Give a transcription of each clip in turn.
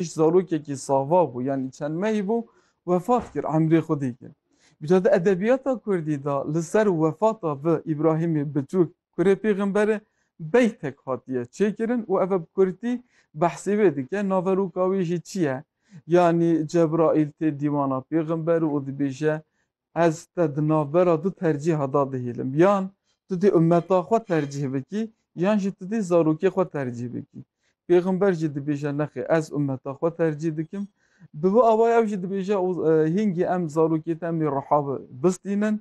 Pişt zarokekî sava bû yanî çend mehî bû wefat kir, emrê xwe dîkir. Îca di edebiyata kurdî de li ser wefata vi Îbrahîmê biçûk kurê pêxembere beytek hatiye çêkirin û ev e bi kurdî behsê wê dike. Naveroka wê jî çi ye? Yanî Cebraîl tê dîwana pêxember û dibêje Ez te di navbera du tercîha de dihêlim. Yan tu dê ummeta xwe tercîh bikî yan jî tu dê zarokê xwe tercîh bikî. Pêxember jî dibêje nexê ez ummeta xwe tercîh dikim. Bi vî awayî ew jî dibêje û hîngî em zarokê te em ê riha bistînin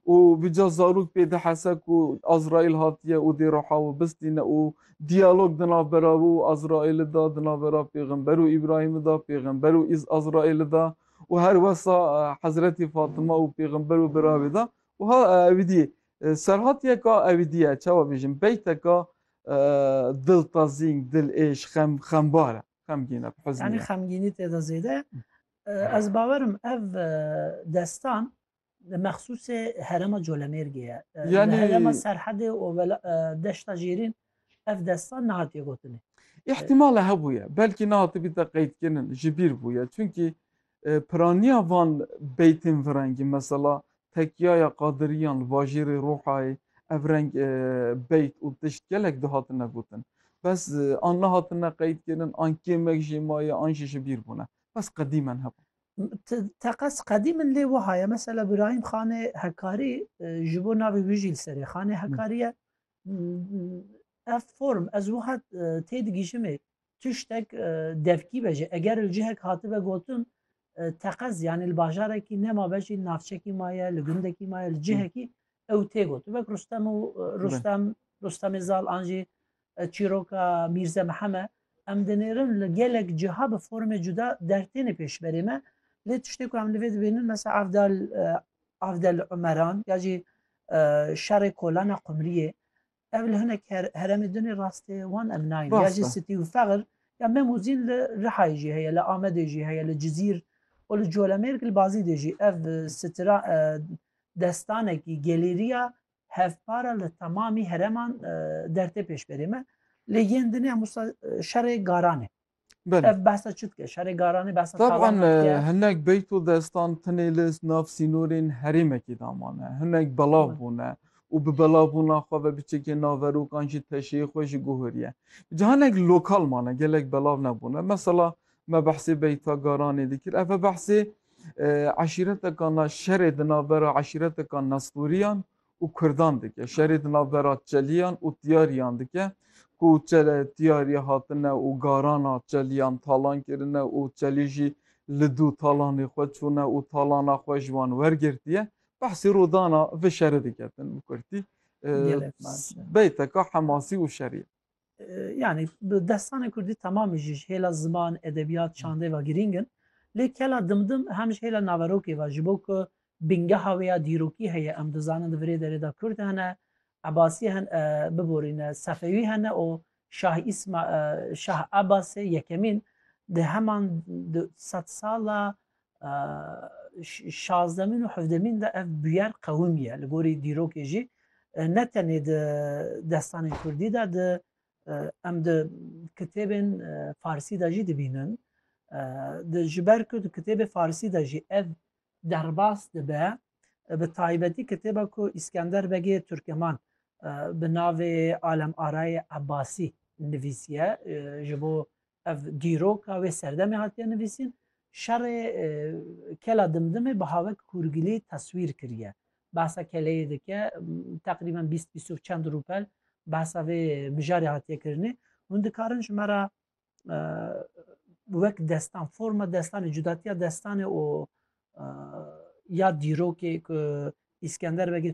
û bi ca zarok pê dihese ku Azraîl hatiye û dê riha wî bistîne û diyalog di navbera wî û Azraîlî de, di navbera pêxember û Îbrahîmî de, pêxember û Azraîlî de, û her wesa Hezretî Fatima û pêxember û biravê de wiha ewî dî serhatiyeka ewî dî ye çawa bêjim beyteka diltazîn, dilêş, xem xembar e xemgîn e bi huznî ye. Yanî xemgînî tê de zêde ye. Ez bawerim ev destan Li mexsûsê herêma Colemêrgê ye. Li herêma Serhedê û Deşta Jêrîn ev destan nehatiye gotinê. Îhtîmala hebûye, belkî nehatibîte qeydkirin, ji bîr bûye. Çimkî piraniya van beytên virengî, mesela Tekiyaya Qadiriyan li bajêrê Rûhayê ev reng beyt û tişt gelek dihatine gotin. Bes an nehatine qeydkirin, an kêmek jê maye, an jî ji bîr bûne. Bes qedîmen hebûn. teqez qedî min lê wiha ye mesela Birahîm xanê hekarî ji bo navê wî jî li serê xanê hekariye ev form ez wiha tê digîjimê tiştek devkî be jî eger li cihek hatibe gotin teqez yanî li bajarekî nema be jî navçekî maye li gundekî maye li cihekî ew tê got wek Rustem û Rustem Rustemê zal an jî Çîroka Mîrze Miheme, Em dinêrin li gelek ciha bi formê cuda der têne pêş berê me. Lê tiştê ku em li vê dibînin mesela Avdal Avdel Umeran ya jî şerê kolana Qumriyê ev li hinek heremê dinê rastê wan em nayên ya jî sitî û feqir ya me muzîn li Rihayê jî heye li Amedê jî heye li Cizîr û li Colemêrg li Bazîdê jî ev sitira destanekî gelêriya Hevpara li temamî hereman dertê pêşberê me lê yên din hemû şerê garanê. Ev behsa çi dike? Şerê garanê behsa Taban hinek beyt û destan tinê li nav sînorên herêmekê de mane. Hinek belav bûne û bi belavbûna xwe ve biçekê naverokan ji teşeyê xwe ji guheriye. Ji hinek lokal mane gelek belav nebûne. Mesela Me behsê Beyta Garanê dikir. Ev e behsê eşîreteka na şerê di navbera eşîreteka Nestûriyan û Kurdan dike. Şerê di navbera Çeliyan û Tiyariyan dike ku Tiyariya hatine û garana Çeliyan talan kirine û Çelî jî li dû talanê xwe çûne û talana xwe ji wan wergirtiye. Behsê rûdana vi şerê diketin bi kurtî. Beyteka hemasî û şerî ye. yani bi destanê Kurdî temamî jî ji hêla ziman, edebiyat, çandê ve girîng in. Lê kela dimdim hem ji hêla naverokê ve ji bo ku bingeha wê ya dîrokî heye em dizanin di virê derê de Kurd hene, Ebasî hen biborîne, Sefewî hene û Şah Îsma Şah Ebasê yekemîn di heman sed sala şazdemîn û hevdemîn de ev bûyer qewim ye li gorî dîrokê jî ne tenê di destanên Kurdî de di em di kitêbên Farsî de jî dibînin di ji ber ku di kitêbê Farsî de jî ev derbas dibe bi taybetî kitêba ku Îskender Begê Turkeman bi navê Alem Arayê Ebasî nivîsiye ji bo ev dîroka wê serdemê hatiye nivîsîn şerê kela dimdimê bi havek hûrgilî teswîr kiriye. Behsa keleyê dike teqrîben bîst bîst û çend rûpel behsa vê mijarê hatiye kirinê. Hûn dikarin ji me ra wek destan forma destanê cudatiya destanê û ya dîrokê ku îskender vegê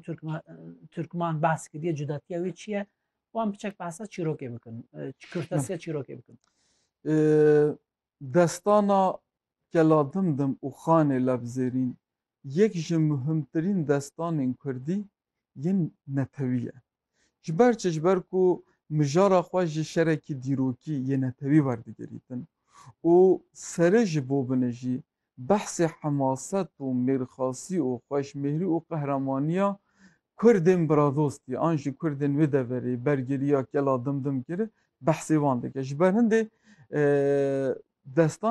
Türkman behs kiriye cudatiya wê çi ye wan biçek behsa çîrokê bikin kurtesiya çîrokê bikin destana keladim dim û xanê levzêrîn yek ji muhimtirîn destanên kurdî yên netewî ye. Ji ber çi? Ji ber ku mijara xwe ji şerekî dîrokî yê netewî werdigirîtin û sere ji bo binijî behsê hemaset û mêrxasî û xweşmêhrî û qehremanîya kurdên biradostî an ji kurdên wê deverê bergirîya Gela Dimdim kir, behsê wan dike. Ji ber hindê destan.